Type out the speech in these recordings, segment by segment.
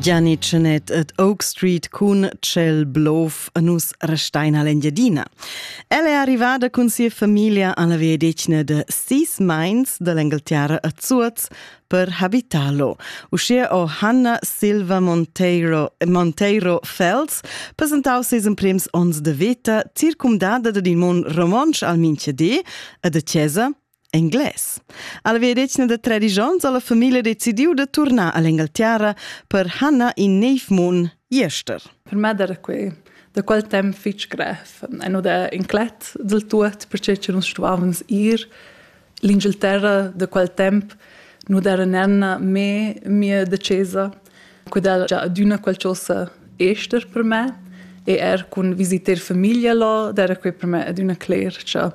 Gianni Tschenett ed Oak Street cun Tschel Blof a nus resteina l'Engiadina. El è arrivada cun sia famiglia alla veedetgna de sis meins dell'Engelterra a Zuoz per habitalo. Uschia o Hanna Silva Monteiro, Monteiro Fels presentau ses emprems onns de veta circumdada dad in mon romontsch al Minchedé e de Chiesa Englais. Alla veedetgna da tredisch onns ha la famiglia decidiu da turnar all'Engalterra per Hanna in neiv mun jester. Per me era quei da quel temps fitg grev. En da inclet del tuot, perché che nus stuavans ir l'Inghilterra da quel temp nu era nenna me mia decesa, quella già adüna qualcosa ester per me e er cun visiter famiglia là, era quei per me adüna cler, cha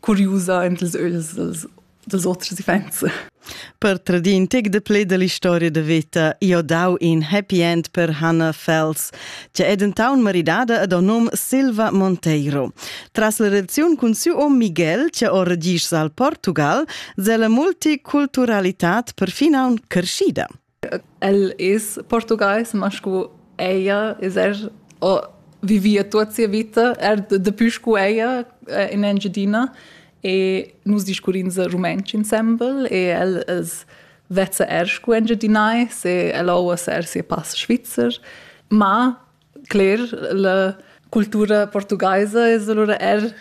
curiusa en ils ögls dels, dels oters iffaints. Per tradir in tic de play dell'historia de vita, io dau in happy end per Hannah Fels, che è dentaun maridada ad o num Silva Monteiro. Tras la redaziun cun siu om Miguel, che o regis al Portugal, se la multiculturalitat perfinaun crescida. El es portugais, ma scu ella es er ho vivia tuot sia vita, er dapü scu ella in Engiadina e nus discurrins rumantsch insembel e el es vezza er scu engiadinais e el ho uossa er sia pass svizzer, ma cler la cultura portugaisa es alura er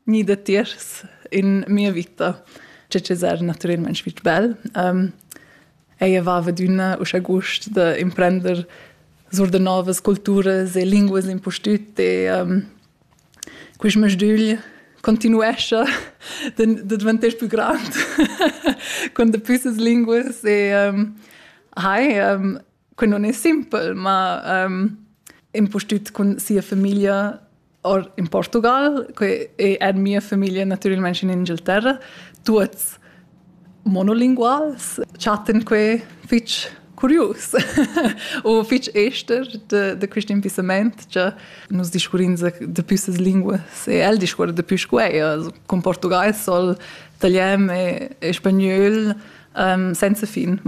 Ni datiers in mia vita. Tge che era natüralmaing fich bel. Ella vaiva adüna uschè gust da imprender sur da novas culturas e linguas impustüt e quist masdügl continuescha da dvanter pü grand con daplü ses linguas e hai Que non è simpel, ma um, impustüt cun sia famiglia or in Portugal, que è er mia famiglia natüralmente in Inghilterra, tuots monolinguals, chatten que fich curius o fich ester de, de quist impissament cha nus discurrins de püssas linguas e el discuorra de pü scu eir, also cun portugais soll italian e, e spagnöl, um, senza fin.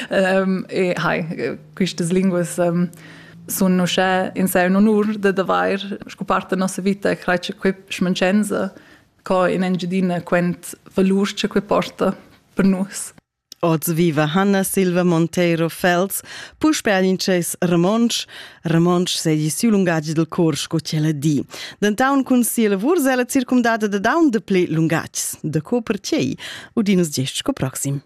um, e hai, quistas linguas um, sun uschè in se un onur da d'avair sco part da nossa vita creat cha quei schmancenza co in Engiadina quent valur che quei porta per nus. Oz viva Hanna Silva Monteiro Fels, puspe al intschess romontsch, Ramontsch seigi siu lungatg dil cor sco quella di. Dentaun cun sia lavur sela circumdada da daun de ple lungatgs. Da co per tgei? Udinus gest sco proxim.